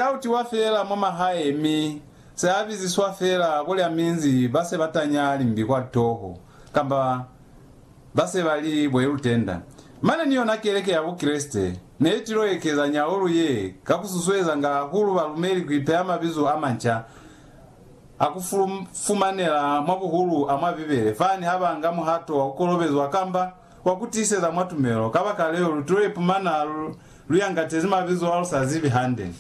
Ka utiwa fela mwa mahae mi za biziswa fela kulya minzi ba se ba tanya limbi kwa toho kamba ba se ba li bwelutenda. Mane ni yona keleke ya Bukreste ne i tilo ekeza nyaulu ye ka ku susuezanga hahulu balumeli ku ipeha mabizo a manca a ku fumanela mwa buhulu a mwa Bibele fani ha ba nga muhato wa ku kolobezwa kamba Kwa ku tiiseza mwa tumelo, kabakaleo lu t'o ipumana lu yangatezi mabizo a lu sa zibi hande.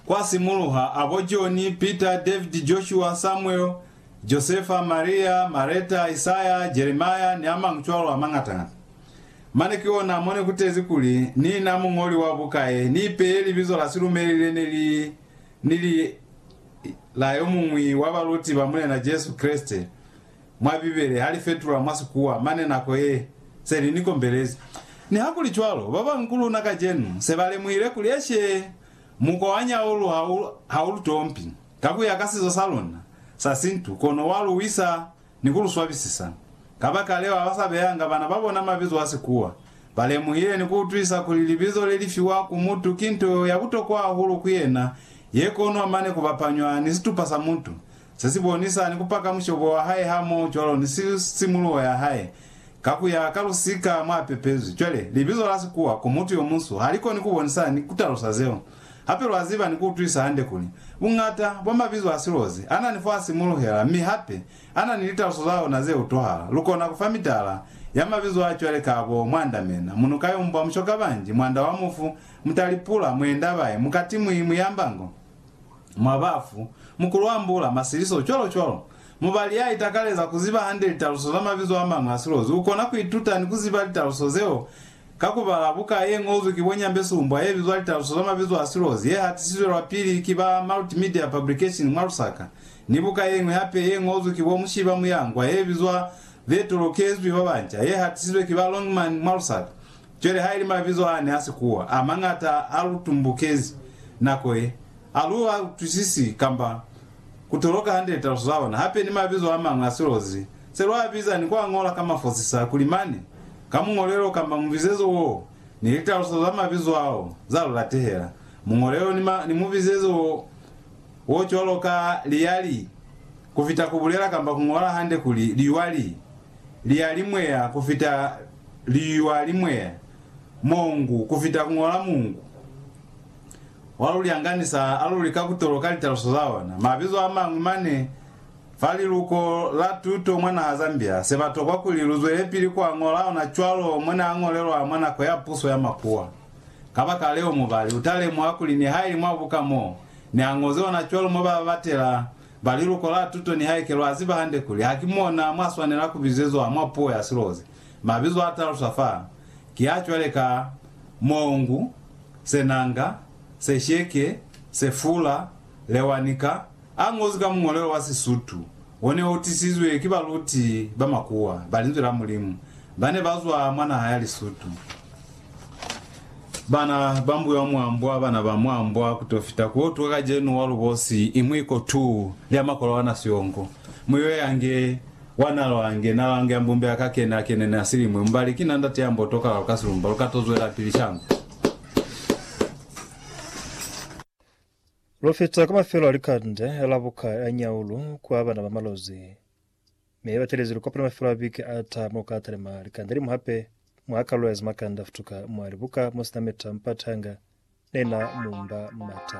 Kwa simuluha, a bo Joni, Pita, Davidi, Joshua, Samuel, Josefa, Maria, Mareta, Isaya, Jeremia, ni a mañi cwalo a mañata-ñata. Mane ki ona mo ne ku tezi kuli, Ni na muñoli wa buka ye ni ipeye libizo la silumeli le ne li ni li la yo muñwi wa baluti ba Mulena Jesu Kreste mwa Bibele ha li fetulwa mwa Sikuwa mane nako ye se li ni kombelezi. Nihakulicwalo, ba bañwi ku luna kacenu se ba lemuhile kuli eshe mukwa wa nyaulu ha u lu tompi ka ku ya ka sizo sa luna sa Sintu, kono wa lu wisa. ni ku lu swabisisa. Kabakaleo, ha ba sa beyanga bana ba bona mabizo a sikuwa, ba lemuhile ni ku utwisa kuli libizo le li fiwa ku mutu ki nto ya butokwa hahulu ku yena ye konwa mane ku bapanywa ni situpa sa mutu se si bonisa ni ku paka mushobo wa hae hamoho cwalo ni simuluho ya hae ka ku ya ka lusika mwa pepezwi. Cwale, libizo la sikuwa ku mutu yo munsu ha li koni ku bonisa ni ku talusa zeo. Hape lwa ziba ni ku utwisa hande kuli, buñata bwa mabizo a silozi a na ni f'a simuluhela mi hape a na ni litaluso za ona ze utwahala. Lu kona ku fa mitala ya mabizo a cwale ka bo mwandamena, munuka yo mbwa, mushokabanji, mwanda wa mufu, mutalipula, muendabae, mukatimwi, muyambango, mwabafu, mukulu wa mbula, masiliso, cwalo-cwalo. Mubali ya itakaleza ku ziba hande litaluso za mabizo a mañwi a silozi u kona ku ituta ni ku ziba litaluso zeo Ka ku bala buka ye ñozwi ki bo Nyambesumbwa ye bizwa Litaluso za Mabizo a Silozi ye hatisizwe lwa pili ki ba Multimedia Publication mwa Lusaka, ni buka ye ñwi hape ye ñozwi ki bo Mushiba Muyangwa ye bizwa Be Tolokezwi ba Banca ye hatisizwe ki ba Longman mwa Lusaka. Cwale ha ili mabizo ane a sikuwa, a mañata a lu tumbukezi nako ye. Ha lu ha utwisisi kamba ku toloka hande litaluso za ona, hape ni mabizo a mañwi a silozi se lwa a biza ni ku a ñola ka mafosisa kuli mane ka muñolelo kamba mubizezo woo ni litaluso za mabizo ao za lu latehela muñolelo ni, ni mubizezo wo, wo cwalo ka liyali ku fita ku bulela kamba ku ñola hande kuli liywa li, liyalimweya ku fita liywa limweya, mongu ku fita ku ñola mungu. wa luli anganisa a luli ka kutoloka litaluso za ona. Mabizo amañwi mane fa liluko la tuto mwa naha Zambia se ba tokwa kuli lu zwelepili ku a ñola ona cwalo mo ne a ñolelwa mwa nako ya puso ya makuwa. Kabakaleo mubali u ta lemuha kuli nihaili mwa buka mo ne a ñozi ona cwalo mo ba batela ba liluko la tuto nihaike lwa ziba hande kuli ha ki mona mwa swanela ku bizezwa mwa puo ya silozi, mabizo a taluswa fa ki a cwale ka, Mongu, Senanga, Sesheke, Sefula, Lewanika, a ñozwi ka muñolelo wa Sisutu o ne o tisizwe ki baluti ba makuwa ba Linzwi la Mulimu ba ne ba zwa mwa naha ya Lisutu. Bana ba mbuya mwa mbwa, bana ba mwa mbwa, ku t'o fita ku utwa kacenu wa lubosi i mwi kotu lya makolwana siyongo, mu yo yange Wa na lwange, na lwange ya mbumbi aka kene a kene ne a si limwi. Mbali, ki na ndate ya mbo tokala lu ka silumba, lu ka to zwelapili shangwe. Lu fita kwa mafelo a likande a la buka ya Nyaulu kwa bana ba malozi. Mi batelezi lu kopana mafelo a biki a taha mo ka talima likande limu hape, mwa kalulo ya zimakanda futuka mwa libuka mo sina meta mpati hanga ne na mumba mata.